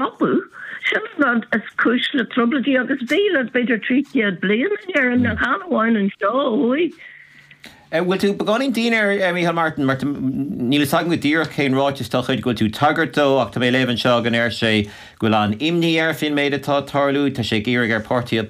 Apu, sin an rud is cúis le trioblóidí agus bhí le b'fhéidir trí chéad bliain in Éirinn a chan amháin anseo ó thuaidh. An bhfuil tú beagáinín dian ar Micheál Martin mar níl fhios agam go díreach cén ráiteas dá chuid go bhfuil tú ag tagairt dó ach tá mé ag léamh anseo go ndeir sé go bhfuil an-imní air faoin méid atá ag tarlú, tá sé ag iarraidh ar páirtithe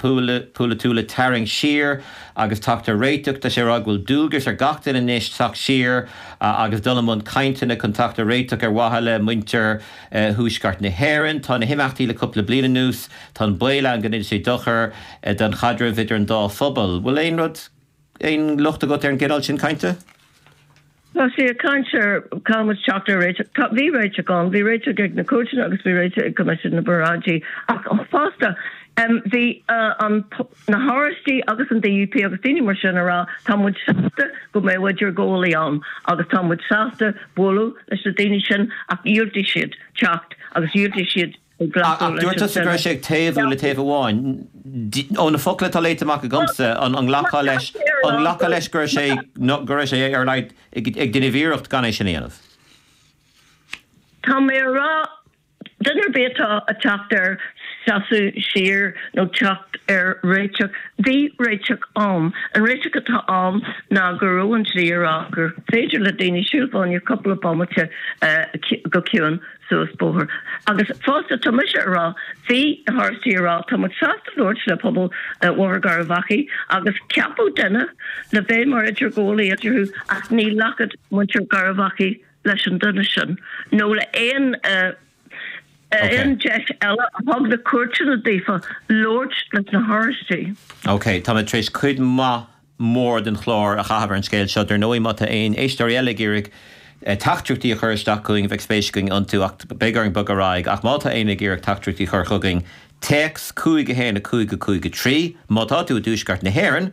polaitiúla tarraingt siar agus teacht ar réiteach, tá sé ag rá go bhfuil dualgas ar gach duine anois teacht siar agus dul i mbun cainteanna chun teacht ar réiteach ar mhaithe le muintir thuaisceart na hÉireann. Tá na himeachtaí le cúpla bliain anuas, tá an baol ann go ndéanfaidh sé dochar don chaidreamh idir an dá phobal. Bhfuil aon rud, aon locht agat ar an gcineál sin cainte? Tá sé ag caint ar caithfidh muid teacht ar réiteach. Tá, bhí réiteach ann, bhí réiteach ag na cúirteanna agus bhí réiteach ag Coimisiún na bParáidí ach fosta bhí an, Na hOráistigh agus an DUP agus daoine mar sin a rá tá muid sásta go mbeidh idirghabhálaí ann agus tá muid sásta bualadh leis na daoine sin ach dhiúltaigh siad teacht agus dhiúltaigh siad glacadh leis an cinneadh. Ach dúirt tusa go raibh sé ag taobhú le taobh amháin. Ó na focla atá léite amach agamsa, an nglacfá leis, an nglacfá leis go raibh sé, go raibh sé ar a laghad ag déanamh iarracht gan é sin a dhéanamh? Tá mé a rá. Duine ar bith atá a' teacht ar sheasamh siar nó teacht ar réiteach, bhí réiteach ann. An réiteach atá ann ná go raibh an dlí a rá gur féidir le daoine siúl fá choinne cúpla bomaite go ciúin suas bóthar. Agus fosta tá mise a rá, bhí na hOráistigh a rá, tá muid sásta labhairt le pobal Bhóthar Gharbhachaidh agus ceapadh duine le bheith mar idirghabhálaí eadarthu ach ní ghlacfadh muintir Gharbhachaidh leis an duine sin nó le haon deis eile a thug na cúirteanna daofa labhairt leis na hOráistigh. OK, tá mé tar éis cuid mhaith, mór den chlár a chaitheamh ar an scéal seo. Dar ndóigh, má tá aon éisteoirí eile ag iarraidh teachtaireachtaí a chur isteach chugainn, bheadh spéis againn iontu ach beidh orainn bogadh ar aghaidh. Ach má tá éinne ag iarraidh teachtaireachtaí a chur chugainn, téacs, 51553, má tá tú i dTuaisceart na hÉireann,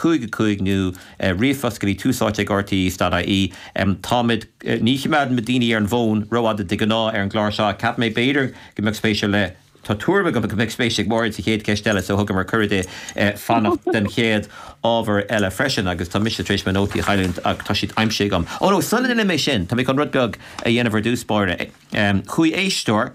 5, 5 nó ríomhphost go dtí tús áite ag RTÉ dot ie, táimid, ní chimeádann muid daoine ar an bhfón rófhada de ghnáth ar an gclár seo ach cheap mé b'fhéidir go mbeadh spéis ar leith, tá tuairim agam go mbeadh spéis ag Máiréad sa chéad cheist eile so thugamar cuireadh di eh fanacht den chéad ábhar eile freisin agus tá mise tar éis mo nótaí a chailliúint ach tá siad aimsithe agam. Ó no, sula ndéanaim é sin, tá mé chun rud beag a dhéanamh ar dtús báire. Em, chuaigh éisteoir.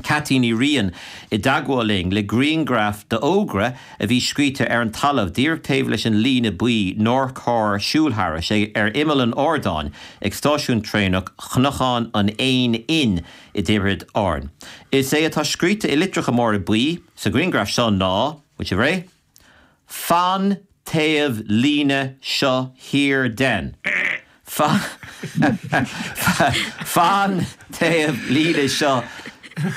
Ceaití Ní Riain i dteagmháil linn le griangraf d'fhógra a bhí scríte ar an talamh díreach taobh leis an líne buí nár chóir siúl thairis, ar imeall an ardáin ag stáisiún traenach Chnocán an Éin Fhinn i dTiobraid Árann. Is é atá scríte i litreacha móra buí sa ghriangraf seo ná, Muid a Bhreith. Fan taobh líne seo thiar den. Fan taobh líne seo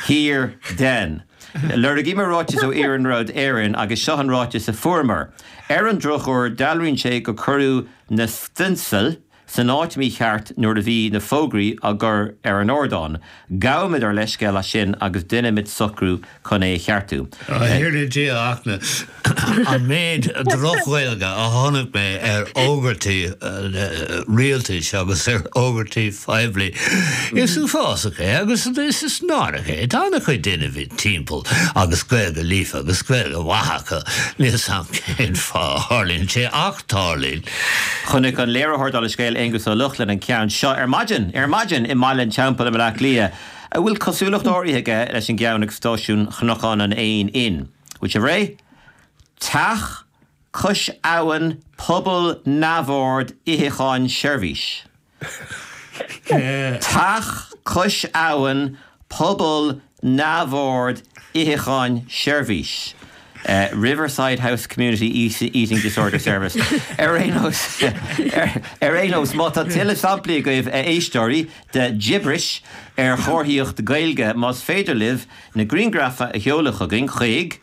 thiar den. Lorgaíomar ráiteas ó Iarnród Éireann agus seo an ráiteas a fuaireamar. Ar an drochuair, dealraíonn sé gur cuireadh na stionsail san áit mícheart nuair a bhí na fógraí á gcur ar an ardán. Gabhaimid ár leithscéal as sin agus déanfaimid socrú chun é a cheartú. A Thiarna Dia Fhachtna, an méid droch-Ghaeilge a chonaic mé ar fhógairtí rialtais agus ar fhógairtí phoiblí. Is uafásach é agus is náireach é. Tá an-chuid daoine timpeall agus Gaeilge líofa agus Gaeilge mhaith acu. Níl 's agam cén fáth a tharlaíonn sé ach. Tarlaíonn. Chonaic an léiritheoir dála an scéil Aonghus Ó Lochlainn an ceann seo ar maidin, ar maidin, i mBaile an Teampaill i mBleá Cliath, a bhfuil cosúlacht áirithe aige leis an gceann ag stáisiún Chnocán an Éin Fhinn. Bhfuil sibh réidh? Teach cois abhann, pobal neamhord, itheacháin, seirbhís. Teach cois abhann, Pobal Neamhord Itheacháin Seirbhís Riverside House Community Eating Disorder Service Ar aon nós, ar aon nós, má tá tuilleadh samplaí agaibh, a éisteoirí, de ghibris ar chomharthaíocht Ghaeilge, más féidir libh na grianghraif a sheoladh chugainn chuig.